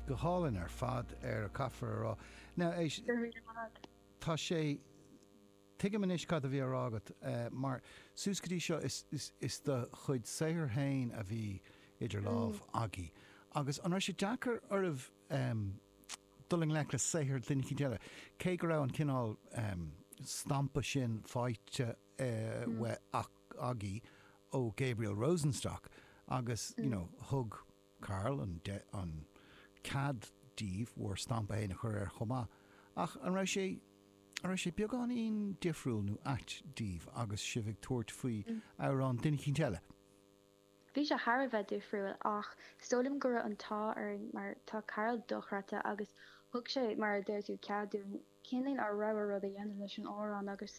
Go hálainn ar fad, ar, caithfear a rá. Now, éist, Go raibh maith agat. tá sé, tuigim anois cad a bhí á rá agat, mar suas go dtí seo is, is, is do chuid saothair féin a bhí idir lámha agaibh. Agus an raibh sé deacair oraibh em dul i ngleic le saothar duine éicint eile, cé go raibh an cineál em stampa sin faighte eh uaidh ach. agaibh ó Gabriel Rosenstock agus you know thug Karl an an cead daoibh bhur stampa fhéin a chur air chomh maith ach an raibh sé an raibh sé beagáinín difriúil nó ait daoibh agus sibh ag tabhairt faoi amhrán duine eicínt eile? Bhí sé thar a bheith difriúil ach 's dóigh liom go raibh an t-ádh orainn mar tá Karl dochreidte agus thug sé mar a deir tú cead dúinn cineáilín ár rogha rud a dhéanamh leis an amhrán agus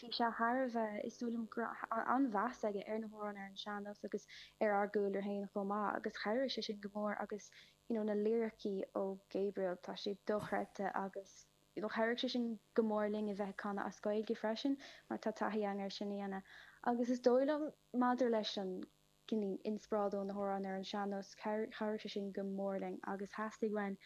bhí sé thar a bheith, is dóigh liom, go raibh an-mheas aige ar na hamhráin ar an sean-nós agus ar ár gcúlra féin chomh maith agus chabhraigh sé sin go mór agus you know na liricí ó Gabriel, tá siad dochreidte agus you know chabhraigh sé sin go mór linn a bheith ag canadh as Gaeilge freisin mar tá taithí againn ar sin a dhéanamh agus is dóigh liom maidir leis an cineáilín inspioráid ó na hamhráin ar an sean-nós, chabhraigh sé sin go mór linn agus theastaigh uainn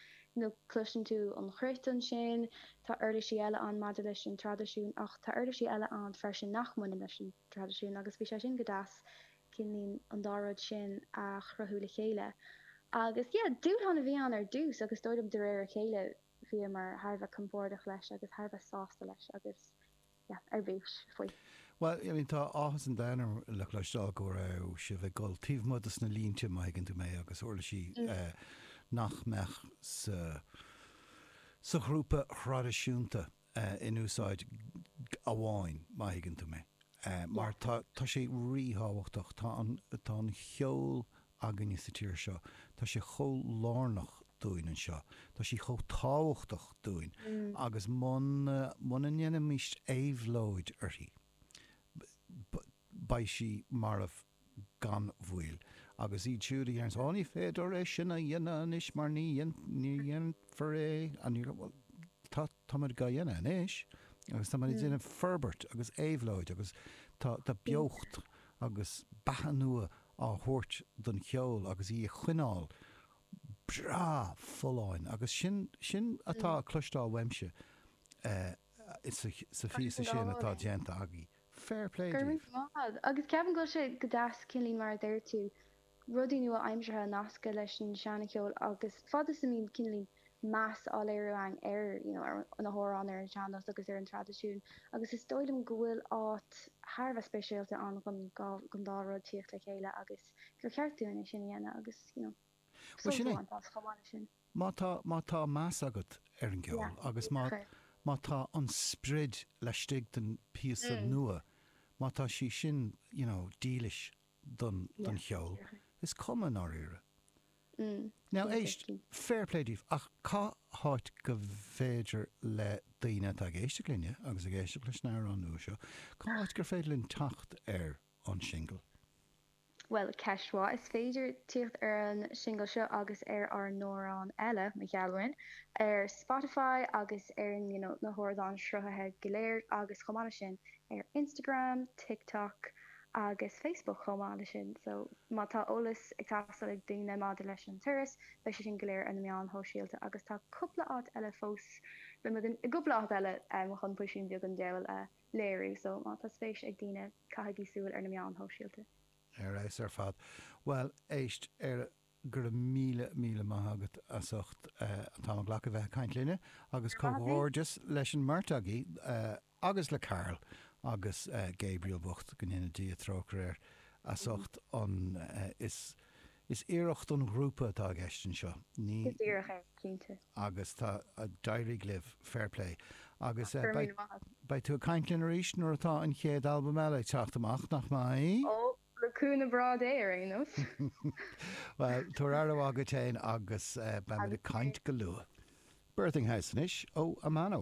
nó cloiseann tú an chruit ansin, tá uirlisí eile ann maidir leis an traidisiún ach tá uirlisí eile ann freisin nach mbaineann leis an traidisiún agus bhí sé sin go deas, cineáilín an dá rud sin a chruthú le chéile. Agus yeah, dúshlán a bhí ann ar dtús agus is dóigh liom de réir a chéile bhíomar thar a bheith compordach leis agus thar a bheith sásta leis agus. yeah ar bís faoi. Bhuel, I mean tá áthas an domhain orm le cloisteáil go raibh sibh ag dul taobh amuigh dos na línte, má thuigeann tú mé, agus uirlisí nach mbeadh sa sa ghrúpa thraidisiúnta in úsáid amháin, má thuigeann tú mé, mar tá sé ríthábhachtach, tá an cheol againne sa tír seo. Tá sé chomh lárnach dúinn anseo. Tá sí chomh tábhachtach dúinn. Agus muna, muna ndéanfaimís éabhlóid uirthi, b, beidh sí marbh gan mhoill. Agus iad siúd a dhéanann, 'Ó, ní féidir é sin a dhéanamh anois mar ní dhéan, ní dhéanfar é. An ní raibh, bhuel, tá, táimid dhá dhéanamh anois agus táimid ag déanamh forbairt agus éabhlóid agus tá, tá beocht agus beatha nua á thabhairt don cheol agus í a choinneáil breá folláin agus sin, sin atá á chloisteáil agamsa sa phíosa sin atá déanta agaibh. Fair play daoibh! Go raibh maith. Agus ceapaim go bhfuil sé go deas, cineáilín, mar a deir tú, rudaí nua-aimseartha a nascadh leis an seancheol agus fad is a mbíonn cineáilín, meas á léiriú againn ar na hamhráin, ar an sean-nós agus ar an traidisiún agus is dóigh liom go bhfuil áit thar a bheith speisialta ann don dá rud tíocht le chéile agus gur cheart dúinn é sin a dhéanamh agus sult a bhaint as chomh maith leis sin. Má tá, má tá meas agat ar an gceol agus má, má tá an sprid laistigh den phíosa nua, má tá sí sin, you know, dílis don, don cheol, is cuma, i ndáiríre. Now éist, fair play daoibh, ach cá háit gur féidir le daoine atá ag éisteacht linne agus ag éisteacht leis an amhrán nua seo, cá háit gur féidir linn teacht ar an singil? Bhuel, ceist mhaith. Is féidir tíocht ar an singil seo agus ar ár n-amhrán eile, Mo Ghealúin, ar Spotify agus ar you know na hardáin sruthaithe go léir agus chomh maith leis sin ar Instagram, TikTok, agus Facebook chomh maith leis sin so má tá eolas ag teastáil ag daoine maidir leis an turas beidh sé sin go léir ar na meáin shóisialta agus tá cúpla áit eile fós le, beimid i gcúpla áit eile um chun píosín beag den damhsa a léiriú so má tá spéis ag daoine caithigí súil ar na meáin shóisialta. Ar fheabhas ar fad. Bhuel, éist, ar. Go raibh míle, míle maith agat as ucht an t-am a ghlacadh bheith ag caint linne agus comhghairdeas leis an mbeirt agaibh agus le Karl agus Gabriel bocht, go ndéana Dia trócaire air, as ucht an, is, is iarracht an ghrúpa atá i gceist anseo, ní? Is iarracht é, cinnte. Agus tá, d'éirigh libh, fair play. Agus Go raibh míle maith agat. beidh tú ag caint linn arís nuair atá an chéad albam eile ag teacht amach, nach mbeidh? Oh, Le cúnamh Dé, ar aon nós. Bhuel, tabhair aire mhaith duit féin agus beimid ag caint go luath. Birthing House anois ó Amano.